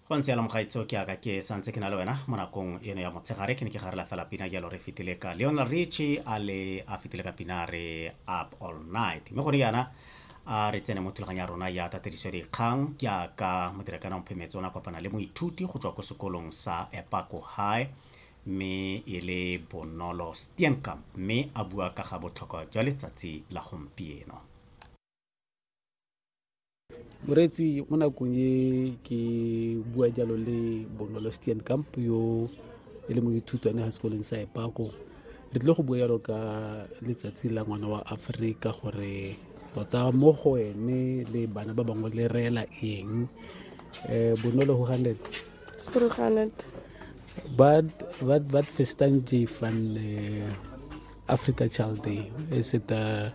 go ntse yalo mogaitso ke aka ke santse ke na le wena mo nakong eno ya motshegare ke ne ke garela fela pina jalo re fetile ka leonel richi a le a fetile ka pina re up all night mme gone yana a re tsene mo thulaganyo ya rona ya tatediso dikgang ke aka modirekana wa mophemetse o ne a kopana le moithuti go tswa ko sekolong sa epako high mme e le bonolo steenkamp mme a bua ka ga botlhokwa jwa letsatsi la gompieno moreetsi mo nakong e ke bua jalo le bonolo stian camp yo e le moithutwane ga sekolong sa epako re tlile go bua jalo ka letsatsi la ngwana wa aforika gore tota mo go ene le bana ba bangwe le reela eng um bonolo go ganet wat festan j van eh, africa child day e seta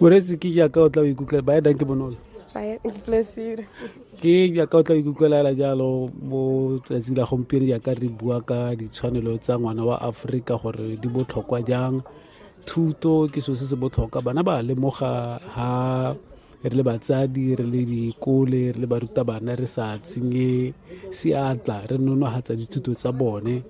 moreetsi ke jaaka o tla o ikutlwa ba edang ke bonolo ke jaaka o tla o ikutlwelela jalo mo tsatsi la gompieno jaaka re bua ka ditshwanelo tsa ngwana wa aforika gore di botlhokwa jang thuto ke selo se se botlhokwa bana ba lemoga ha re le batsadi re le dikole re le barutabana re sa tsenye seatla re nonogatsa dithuto tsa bone